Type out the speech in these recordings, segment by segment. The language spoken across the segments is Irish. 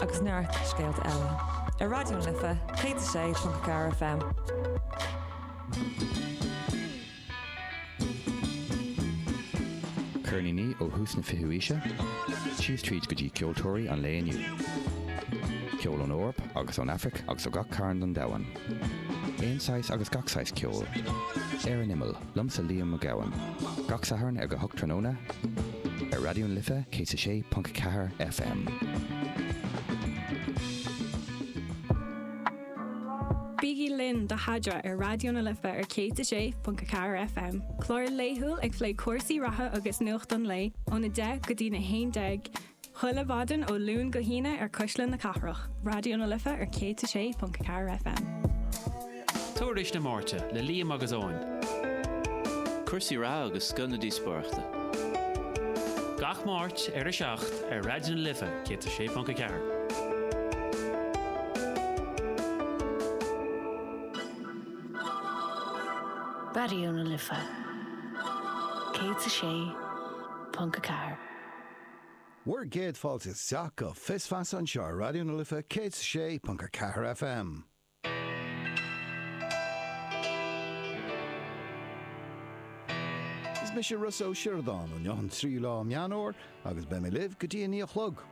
agus neart scéalta eile ar Raidió na Life 106.4 FM. Ceirníní ó thús na fichiú aoise, síos tríd go dtí ceoltóirí an lae inniu. Ceol ón Eoraip agus ón Afraic agus ó gach cearn den domhan. Aon saghas agus gach saghas ceoil. Ar an imeall. Liomsa Liam Mac Gabhann. Gach Satharn ar a hocht tráthnóna ar Raidió na Life 106.4 FM. Bígí linn do Adhmhaidin ar Raidió na Life ar 106.4 FM, clár laethúil ag plé cúrsaí reatha agus nuacht an lae ón 10 go dtí na 11 Chuile mhaidin ó Luan go hAoine ar Cuisle na Cathrach, Raidió na Life ar 106.4 FM. Tuairisc na Máirte le Liam agus Eoin. Cúrsaí reatha agus scoth na díospóireachta. Gach Máirt ar 7 ar Raidió na Life 106.4. Raidió na Life 106.4. Bhur gcéad fáilte isteach go Fios Feasa anseo ar Raidió na Life 106.4 FM. Is mise Rossa Ó Sioradáin, inniu an tríú lá Meán Fómhair agus beidh mé libh go dtí a naoi a chlog.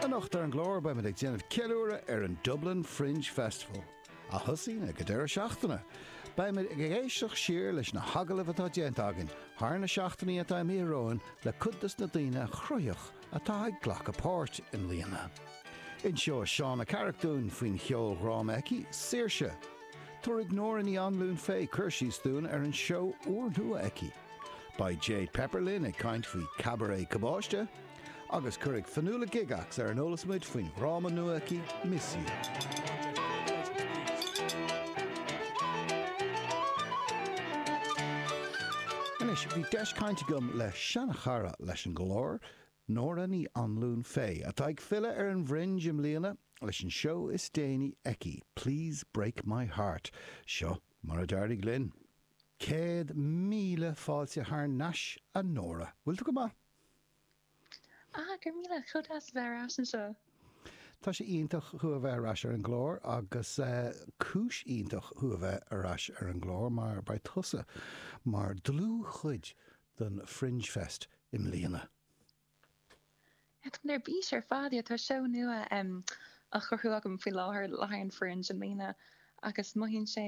Anocht ar an gclár beimid ag déanamh ceiliúradh ar an Dublin Fringe Festival, a thosaíonn ag an deireadh seachtaine. Beimid ag éisteacht siar leis na hagallaimh atá déanta againn thar na seachtainí atá imithe romhainn le cuid dos na daoine cruthaitheacha atá ag glacadh páirt i mbliana. Inseoidh Shauna Carrick dúinn faoin cheoldhráma aici, Saoirse. Tabharfaidh Nóra Ní Anluain Faye cur síos dúinn ar an seó úrnua aici. Beidh Jay Pepper linn ag caint faoi Cabaret Cabáiste agus cuirfidh Fionnuala Gygax ar an eolas muid faoin dhráma nua aici Miss You. Anois, bhí deis caint agam le seanchara leis an gclár, Nóra Ní Anluain Fay, atá ag filleadh ar an bhFringe i mbliana leis an seó is déanaí aici, Please Break My Heart. Seo mar a d'éirigh linn. Céad míle fáilte thar n-ais a Nóra. Bhfuil tú go maith? Ah, go raibh míle. Chomh deas a bheith ar ais anseo. Tá sé iontach thú a bheith ar ais ar an gclár agus cúis iontach thú a bheith ar ais ar an gclár mar beidh tusa mar dlúthchuid den Fringe Fest i mbliana. Táim ar bís ar fad, yeah. Tá seó nua á chruthú agam faoi láthair le haghaidh an Fringe i mbliana agus mothaíonn sé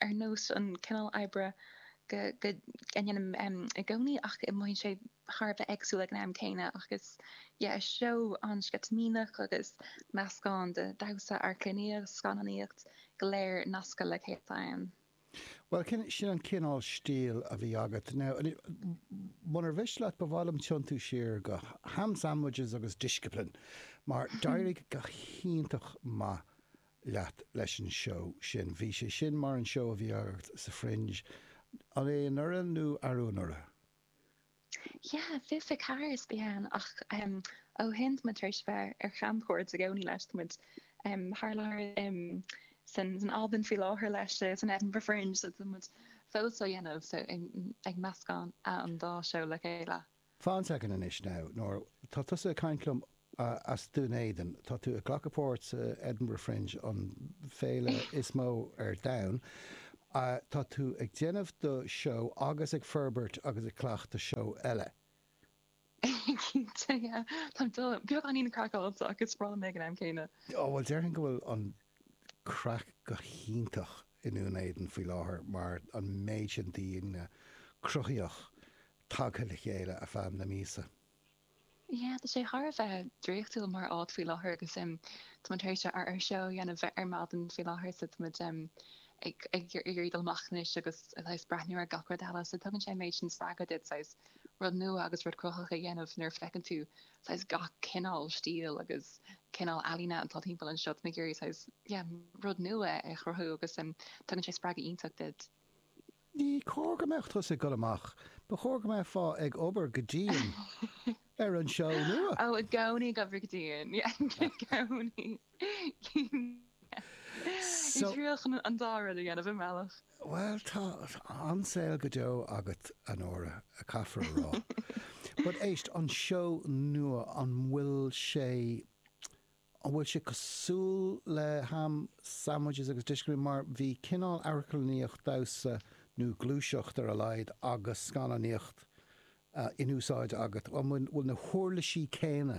ar nós an cineál oibre go, go ndéanaim i gcónaí ach mothaíonn sé thar a bheith éagsúil ag an am céanna agus yeah, is seó an-sceitimíneach agus meascán de dhamhsa, amharclannaíocht, scannánaíocht, go léir nasctha le chéile ann. Bhuel, sin, sin an cineál stíl a bhí agat. Now, munar mhiste leat, ba mhaith liom tiontú siar go Ham Sandwiches agus Discipline, mar d'éirigh go hiontach maith leat leis an seó sin. Bhí sé sin mar an seó a bhí agat sa Fringe, an é anuraidh nó arú anuraidh? Yeah, fiche fiche ceathair is bhí, ach em ó shin táimid tar éis bheith ar chamchuaird i gcónaí leis, tá muid em thar lear em san san Albain faoi láthair leis eh san Edinburgh Fringe so tá muid fós á dhéanamh so em ag meascán a an dá seó le chéile. Fan, inis dom anois now, tá tusa ag caint liom as Dún Éideann. Tá tú ag glacadh páirt sa Edinburgh Fringe, an féile is mó ar domhan. Tá tú ag déanamh do sheó agus ag forbairt agus ag cleachtadh seó eile. Cinnte, yeah. Tá sé beagáinín craiceáilte ach is breá liom é ag an am céanna. Ó, bhuel, déarfainn go bhfuil an craic go hiontach i nDún Éideann faoi láthair mar an méid sin daoine cruthaitheach tagtha le chéile ar feadh na míosa. Yeah, tá sé thar a bheith draíochtúil mar áit faoi láthair agus em tá muid tar éis ár ár seó a dhéanamh ar maidin faoi láthair so tá muid em ag ag ag iarraidh dul amach anois agus a saghas breathnú ar gach rud eile so tugann sé an méid sin spreagtha duit saghas rud nua agus rud cruthaitheach a dhéanamh nuair a fheiceann tú saghas gach cineál stíl agus cineál ealaíne atá timpeall anseo tá muid ag iarraidh saghas yeah rud nua a chruthú agus em tugann sé spreagadh iontach duit. Ní cóir go mbeadh tusa ag dul amach, ba chóir go mbeifeá ag obair go dian ar an seó nua. Ó, i gcónaí ag obair go dian, i gcónaí. Ag triail chun an dá rud a dhéanamh i mbealach. Bhuel, tá an saol go deo agat, a Nóra, caithfear a rá. But éist, an seó nua, an bhfuil sé An bhfuil sé cosúil le Ham Sandwiches agus Discipline? Mar bhí cineál amharclannaíocht, damhsa nó gluaiseacht ar a laghad, agus scannánaíocht in úsáid agat. An bhfuil na huirlisí céanna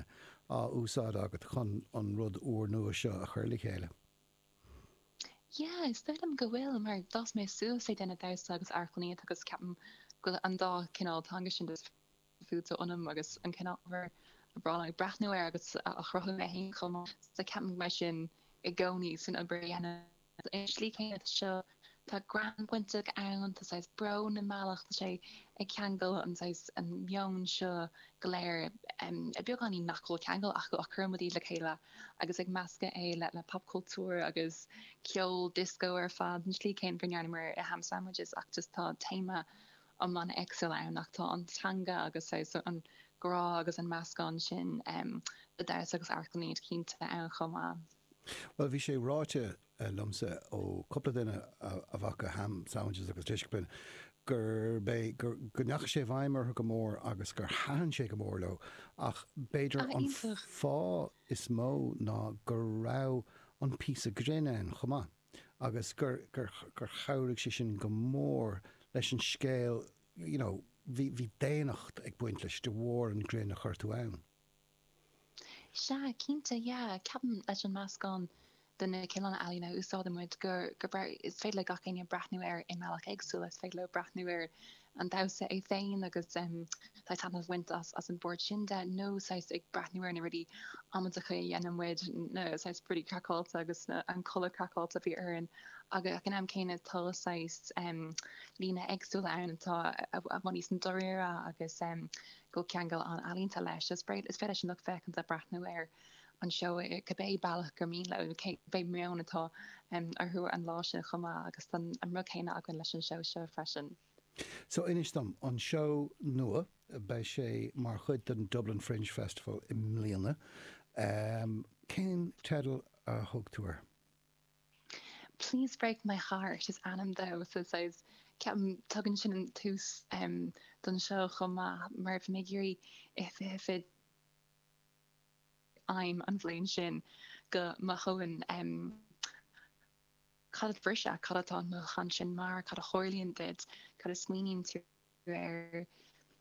á úsáid agat chun an rud úr nua seo a chur le chéile? Yeah, is dóigh liom go bhfuil mar d'fhás mé suas ag déanamh damhsa agus amharclannaíocht agus ceapaim go bhfuil an dá cineál teanga sin fuaite ionam agus an cineál ábhair is breá liom breathnú air agus á chruthú mé féin chomh maith. Sea, ceapaim go mbeidh sin i gcónaí san obair a dhéanaim ar an tslí chéanna seo, tá greann bainteach ann, tá saghas brón i mbealach, tá sé ag ceangal an saghas, an meon seo go léir i beagáinín nach bhfuil ceangal acu ach cuireann muid iad le chéile agus ag meascadh é le popchultúr agus ceol disco ar fad, an tslí chéanna go ndearnamar i Ham Sandwiches ach just tá téama iomlán éagsúil ann, ach tá an teanga agus an grá agus an meascán sin de dhamhsa agus amharclannaíocht cinnte ann chomh maith. Bhuel, bhí sé ráite liomsa ó chúpla duine a bhfaca Ham Sandwiches agus Discipline gurb é, go ndeachaigh sé i bhfeidhm orthu go mór agus gur thaitin sé go mór leo ach b'fhéidir an fáth is mó ná go raibh an píosa grinn ann chomh maith. agus gur chabhraigh sé sin go mór leis an scéal you know bhí daonnacht ag baint leis de bharr an ghrinn a chuir tú ann. Sea, cinnte, yeah. Ceapaim leis an meascán de na cineálacha ealaíne a úsáideann muid, gur, gur, is féidir le gach éinne breathnú air i mbealach éagsúil, is féidir leo breathnú air an damhsa é féin agus saghas taitneamh a bhaint as an bpáirt sin de nó saghas ag breathnú ar na rudaí amaideacha a dhéanann muid, na saghas rudaí craiceáilte agus an culaith craiceáilte a bhí orainn ach ag an am céanna tá saghas líne éagsúla ann atá i bhfad níos dáiríre agus go ceangal an-ealaíonta leis. Is féidir leis an lucht féachanta breathnú ar an seó i cibé bealach gur mian leo nó cibé meon atá orthu an lá sin chomh maith agus tá an rud céanna againn leis an seó seo freisin. So inis dom, an seó nua, beidh sé mar chuid den Dublin Fringe Festival i mbliana, cén teideal a thug tú air? Please Break My Heart is ainm dó so ceapaim tugann sin an tús don seó chomh maith mar bhí mé ag iarraidh i fiche fiche aidhm an bhliain sin go mothóinn cad é briseadh, cad atá an mothúchán sin mar, cad a tharlaíonn duit, cad a smaoiníonn tú air,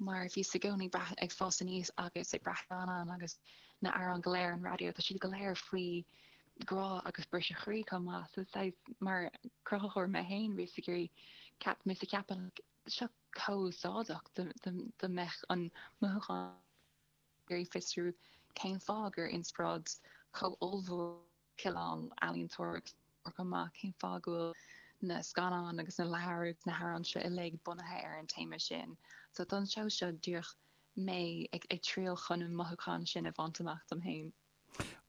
mar bhíos i gcónaí breath ag fás aníos agus ag breathnú anonn agus na amhráin go léir an raidió tá siad go léir faoi ghrá agus briseadh croí chomh maith so saghas mar cruthaitheoir mé féin bhíos ag iarraidh ceap bhíos ag ceapadh seo chomh úsáideach dá mbeadh an mothúchán iarraidh fiosrú cén fáth gur inspioráid chomh ollmhór cineál ealaíontóireacht mhór chomh maith, cén fáth go bhfuil na scannáin agus na leabhair agus na hamhráin seo uilig bunaithe ar an téama sin. So don seó seo díreach mé ag ag triail chun an mothúchán sin a bhaint amach dom féin.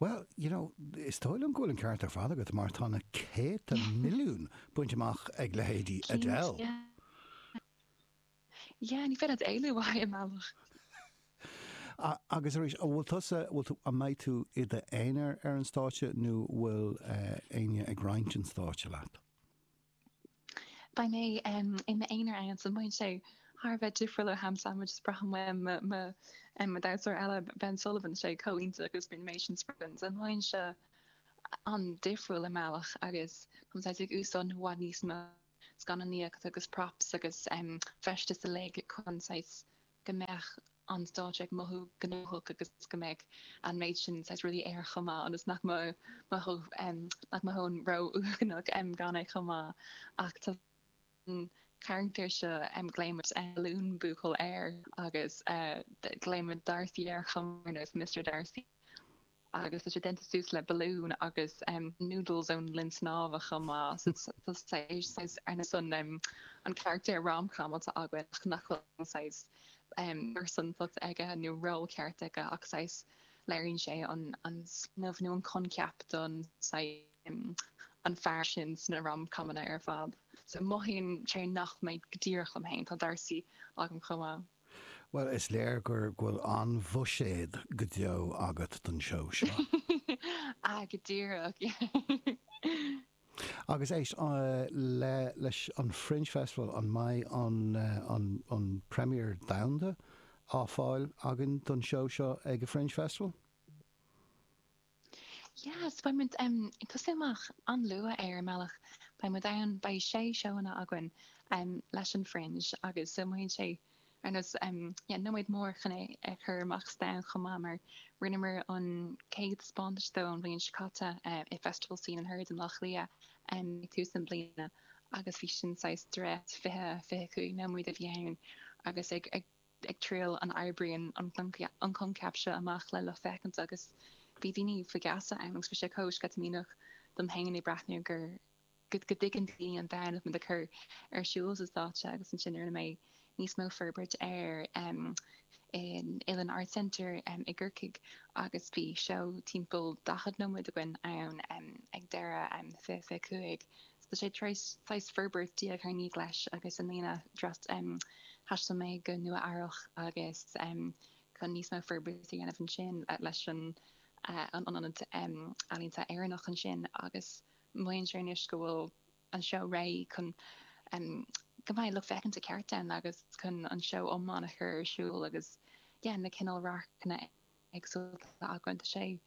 Bhuel, you know, is dóigh liom go bhfuil an ceart ar fad agat mar tá na céadta milliún bainte amach ag leithéidí Adele. Cinnte. Yeah, ní féidir leat éalú uaidh i mbealach. Agus arís, an bhfuil tusa, an bhfuil tú, an mbeidh tú i d'aonar ar an stáitse nó bhfuil éinne ag roinnt an stáitse leat? Beidh mé i m'aonar ann, so mothaíonn sé thar a bheith difriúil ó ham sandwich is braithim uaim mo damhsóir eile Ben Sullivan, sé chomh iontach agus bíonn mé sin spreagadh so mothaíonn sé, an-difriúil i mbealach agus tá mé ag úsáid i bhfad níos mó. scannánaíocht agus props agus feisteas uilig chun saghas go mbeadh an stáitse ag mothú gnóthach agus go mbeadh an méid sin saghas rudaí air chomh maith ionas nach mothóinn ró-uaigneach gan é chomh maith ach tá an carachtar seo glaoim muid Balloon Buachaill air agus glaoim muid Darcy air chomh maith nó Mister Darcy agus tá sé déanta suas le balloon agus noodles ón linn snámha chomh maith so tá saghas ar nós an carachtar rom-com atá againn ach nach bhfuil saghas pearsantacht aige nó ról ceart aige ach saghas léiríonn sé an an smaoineamh nó an coincheap den an fear sin sna rom-comanna ar fad so mothaíonn sé nach mé go díreach liom fhéin tá Darcy agam chomh maith Bhuel, is léir go bhfuil an-bhuiséad go deo agat don seó seo. Ah, go díreach! Agus éist leis an Fringe Festival, an mbeidh an premiere domhanda á fáil againn don seó seo ag an Fringe Festival? Yes, beidh muid em ag tosú amach an-luath ar an mbealach. Beidh muid ann, beidh sé sheó againn em leis an Fringe agus so mothaíonn sé ar nós em yeah nóiméad mór chun é a chur amach sa domhan chomh maith mar rinneamar an chéad taispeántas dó an bhliain seo caite eh i Festival Scene and Heard in Áth Cliath em ag tús na bliana agus bhí sin saghas dréacht fiche, fiche cúig nóiméad a bhí ann agus ag, ag ag triail an oibríonn an coincheap seo amach le lucht féachana agus bhí daoine faoi gheasa ann agus bhí sé chomh sceitimíneach dom féin ag breathnú gur go dtuigeann daoine an domhan atá muid ag cur ar siúl sa stáitse agus ansin rinne mé níos mó forbairt air in Uillinn Arts Centre i gCorcaigh agus bhí seó timpeall 40 nóiméad againn ann ag deireadh 2025 Tá sé tar éis saghas forbairt diaidh ar ndiaidh leis agus i mbliana thaistil mé go Nua Eabhrach agus chun níos mó forbairt a dhéanamh ansin leis an an ionad ealaíonta Éireannach ansin agus mothaíonn sé anois go bhfuil an seó réidh chun go mbeidh lucht féachana ceart ann agus chun an seó iomlán a chur ar siúl agus yeah na cineál radharcanna éagsúlta againn. Tá sé,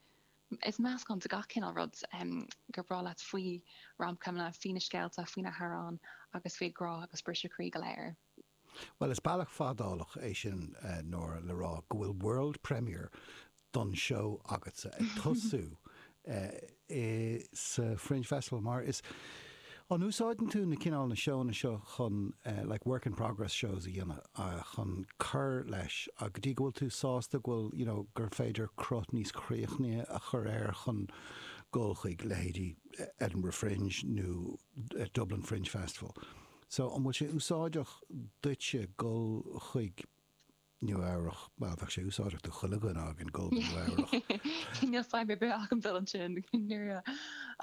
is meascán de gach cineál rud gur breá leat faoi rom-comeanna, faoi na scéalta, faoi na hamhráin agus faoi ghrá agus briseadh croí go léir. Bhuel, is bealach fadálach é sin, Nóra, le rá go bhfuil world premiere don seó agatsa ag tosú. i sa Fringe Festival mar is An úsáideann tú na cineál na seónna seo chun eh like work in progress shows a dhéanamh ah chun cur leis ah go dtí go bhfuil tú sásta go bhfuil you know gur féidir cruth níos críochnaithe a chur air chun goil chuig leithéidí Edinburgh Fringe nó Dublin Fringe Festival so an bhfuil sé úsáideach duitse goil chuig Nua-Eabhrac, mar bheadh sé úsáideach do chuile dhuine againn dul go Nua-Eabhrac. Níl fadhb ar bith agam dul ansin, Nua-Eabhrac.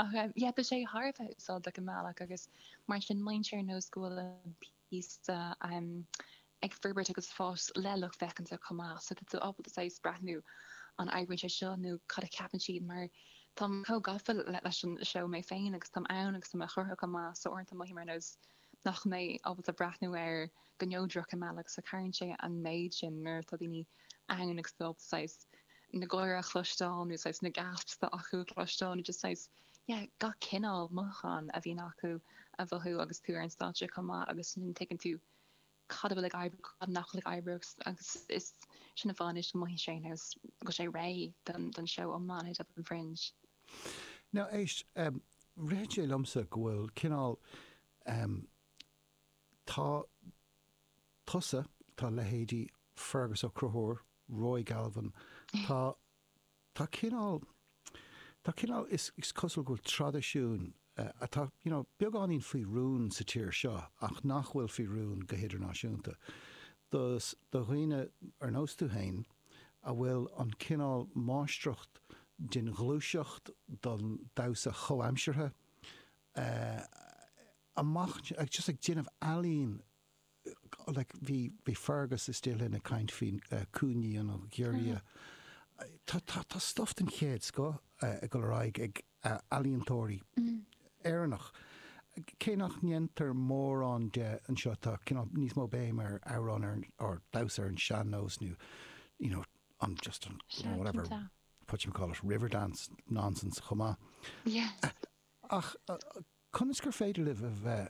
Ach yeah, tá sé thar a bheith úsáideach i mbealach agus mar sin mothaíonn sé ar nós go bhfuil an píosa ag forbairt agus fás le lucht féachanta chomh maith. So tá tú ábalta saghas breathnú an oibríonn sé seo nó cad a cheapann siad mar táim chomh gafa leis an seó mé féin agus táim ann agus táim á chruthú chomh maith so uaireanta mothaím ar nós nach mbeidh ábalta breathnú air go neodrach i mbealach so cabhraíonn sé an méid sin nuair atá daoine ann agus tú ábalta saghas na gáire a chloisteáil nó saghas na gasps atá acu a chloisteáil nó just saghas yeah gach cineál mothúchán a bhíonn acu a mhothú agus tú ar an stáitse chomh maith agus ansin tuigeann tú cad a bhfuil ag oibriú, cad nach bhfuil ag oibriú agus is sin an fáth anois go mothaíonn sé ar nós go bhfuil sé réidh don seó iomlán i Dublin Fringe. Now, éist, ritheann sé liomsa go bhfuil cineál, tá tusa, tá leithéidí Fearghus Ó Conchúir, Roy Galvin, tá, tá cineál, tá cineál, is cosúil go bhfuil traidisiún atá you know beagáinín faoi rún sa tír seo ach nach bhfuil faoi rún go hidirnáisiúnta do, do dhaoine ar nós tú féin a bhfuil an cineál máistreacht den ghluaiseacht, den damhsa chomhaimseartha eh amach just ag déanamh ealaín like bhí bhí Fearghus istigh linn ag caint faoi coiníní nó giorria. Tá tá tá stuff den chéad scoth ag dul ar aghaidh ag ealaíontóirí Éireannach. Cé nach ndéantar mórán de anseo tá cineál níos mó béim ar amhrán ar or damhsa ar an sean-nós nó you know an just an Sea whatever cinnte. whatchamacallit Riverdance nonsense chomh maith. Yes. Ach conas gur féidir libh a bheith